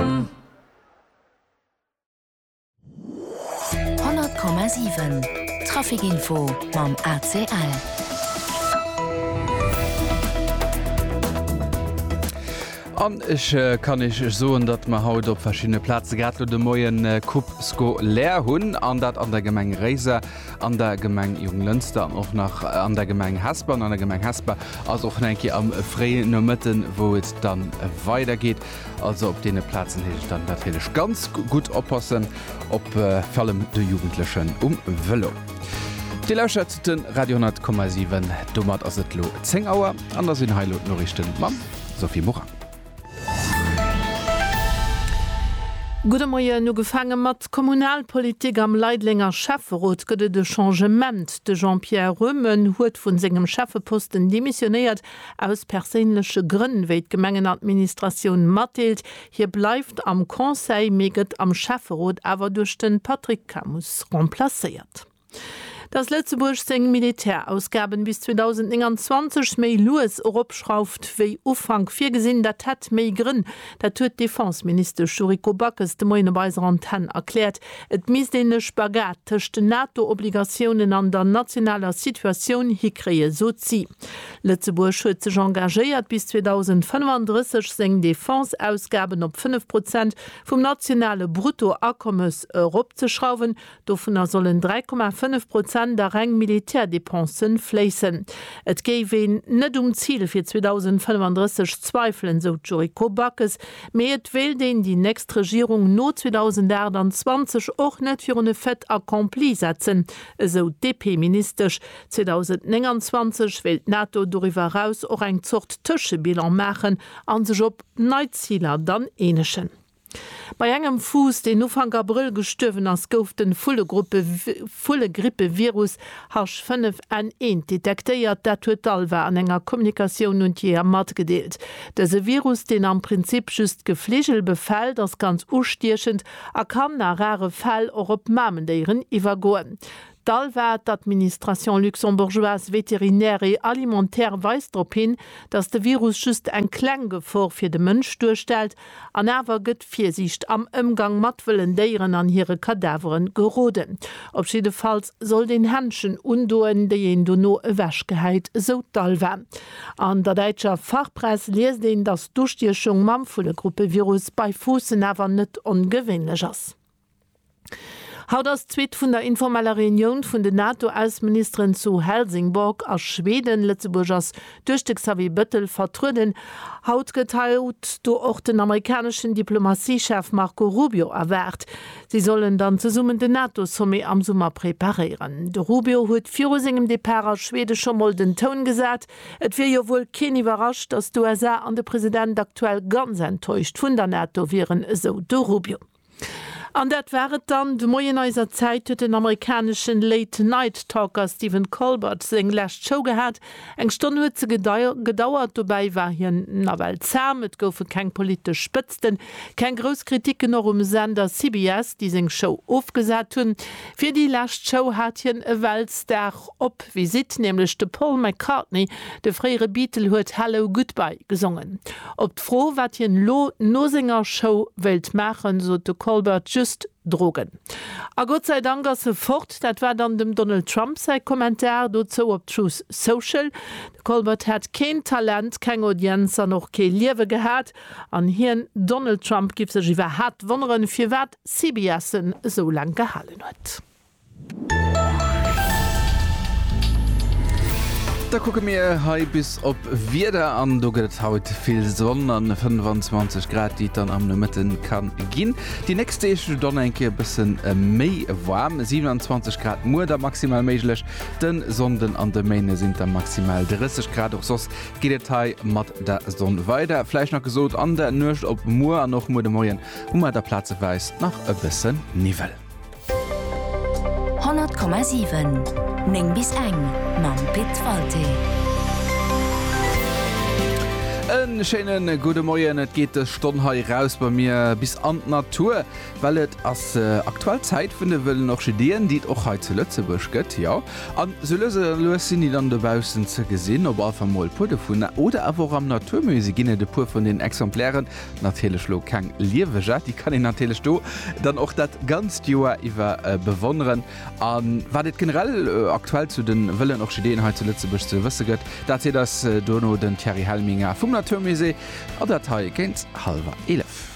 100,7 Trafic Info mam ACL. An ech kann Iech soen, datt mer haut op verschinne Plaze grad lo de Moien Kupp Sko leer hunn, an dat an der Gemeng Réiser, an der Gemeng Jonglënster an och nach an der Gemeng Hesper. An der Gemeng Hesper ass och nach eng Kéier am fréien Nomëtten, wou et dann weidergeet. Also op deene Plazen heescht et dann natierlech ganz gutt oppassen, op vallem de Jugendlechen um Vëlo. Dir lauschtert de Radio 10,7. Domat ass et elo 10 Auer an da sinn hei elo d'Noriichte mam Sophie Morang. Gudde Moien. Ugefaange mat Kommunalpolitik, Am Leidelenger Schäfferot gëtt et e Changement. De Jean-Pierre Röhmen huet vu sengem Schäffeposten demissionéiert Aus perséinleche Grënn, wéi d'Gemengenadministratioun matdeelt, hie bleift am Conseil, mee gëtt am Schäfferot awer duerch de Patrick Camus remplacéiert. Datt Lëtzebuerg seng Militärausgaben bis 2029 méi lues eropschrauft wéi Ufank virgesinn, dat hätt méi Grënn. Dat huet d'Defenseministesch Yuriko Backes de Moien op eiser Antenn erkläert. Et misst een e Spagat tëscht den NATO-Obligatiounen an der nationaler Situatioun hikréien, sot si. Lëtzebuerg huet sech engagéiert, bis 2035 seng Defense-Ausgaben op 5 Prozent vum nationale Bruttoakommes eropzeschrauwen. Dovunner sollen 3,5 Prozent a reng Militärdepense fléissen. Et géif een net um Zil fir 2035 zweifelen, sou d'Yuriko Backes, Mee et wéilt een déi nächst Regierung no 2028 och net virun e Fait accompli setzen, esou d'DP-Ministesch. 2029 wéilt d'NATO doriwwer eraus och eng Zort Tëschebilan maachen a sech op nei Ziler dann eenegen. Bei engem Fuuss, deen Ufank Abrëll gestuerwen ass, gouf de Vullegrippe-Virus Hasch 5 N eent detektéiert, dat huet d'ALVA an enger Kommunikatioun un d'Jeeër matgedeelt. Dëse Virus, deen am Prinzip just d'Gefligel befält, ass ganz ustiechend a kann a rare Fäll och op Mamendéieren iwwergoen. D'ALVA, d'Administration luxembourgeoise vétérinaire et alimentaire, weist drop hin, datt de Virus just eng kleng Gefor fir de Mënsch duerstellt An awer gëtt Virsiicht am Ëmgang mat wëllen Déieren an hire Kadavere geroden. Op jiddefalls sollt een Händschen undoen, déi een dono ewech gehäit, esou d'ALVA. An der däitscher Fachpress liest een, datt d'Ustiechung mam Vullegruppevirus bei Fuussen awer net ongewéinlech ass. Haut ass d'Suite vun der informeller Reunioun vun den NATO-Ausseministeren zu Helsingborg a Schweden. Lëtzebuerg ass duerch de Xavier Bettel vertrueden. Haut gëtt haut do och den amerikaneschen Diplomatiechef Marco Rubio erwaart. Si sollen dann zesummen den NATO-Sommet am Summer preparéieren. De Rubio huet viru sengem Depart a Schwede scho mol den Toun gesat. Et wier jo wuel keen iwwerrascht, datt d'USA an de President aktuell ganz enttäuscht vun der NATO wieren, esou de Rubio. An dat war et dann de Moien eiser Zäit, huet den amerikaneschen Late Night Talker Stephen Colbert seng lescht Show gehat. Eng Stonn huet se gedauert, dobäi war hien nawell zaam, et goufe keng politesch Spëtzten, keng grouss Kritiken, och um Sender CBS, déi seng Show ofgesat hunn. Fir déi lescht Show hat hien e Weltstar. Op Visitt, nämlech de Paul McCartney, de fréiere Beatle huet Hello, Goodbye gesongen. Op d'Fro, wat hien elo no senger Show wéilt maachen, sot de Colbert just Drogen. A Gott säi Dank ass e fort, dat war dann dem Donald Trump säi Kommentar dozou op Truth Social. De Colbert hätt keen Talent, keng Audienz an och kee Liewe gehat. An hien, Donald Trump, giff sech iwwerhaapt wonneren, firwat CBS en esou laang gehalen huet. Da kucke mir hei bis op Wieder an do gëtt et haut vill Sonn an 25 Grad, déi et dann am Nomëtte ka ginn. Déi nächst Deeg dann eng Kéier e bësse méi waarm, 27 Grad muer da maximal méiglech. De Sonnden an de Méinde sinn et da maximal 30 Grad. Och soss geet et hei mat der Sonn weider. Vläicht nach gesot, an der Nuecht op muer an och muer de Moien hu mer da plazeweis nach e bësse Niwwel. 100,7 9 bis eng mam Pit Walté. E schéine gudde Moien. Et geet dës Stonn hei eraus bei mir bis an d'Natur, well et ass aktuell Zäit vun de wëllen Orchideeën, déi et och hei zu Lëtzebuerg gëtt. Jo, an sou lues a lues sinn déi dann dobaussen ze gesinn, op alle Fall mol e puer dovun. Oder awer och am Naturmusée ginn et e puer vun den Exemplairen. Natierlech lo keng Lieweger, déi kann een natierlech do dann och dat ganzt Joer iwwer bewonneren. A wat et generell aktuell zu de wëllen Orchideeën hei zu Lëtzebuerg ze wësse gëtt, dat seet eis dono den Thierry Helminger vum Naturmusée. An dat hei géint hallwer 11.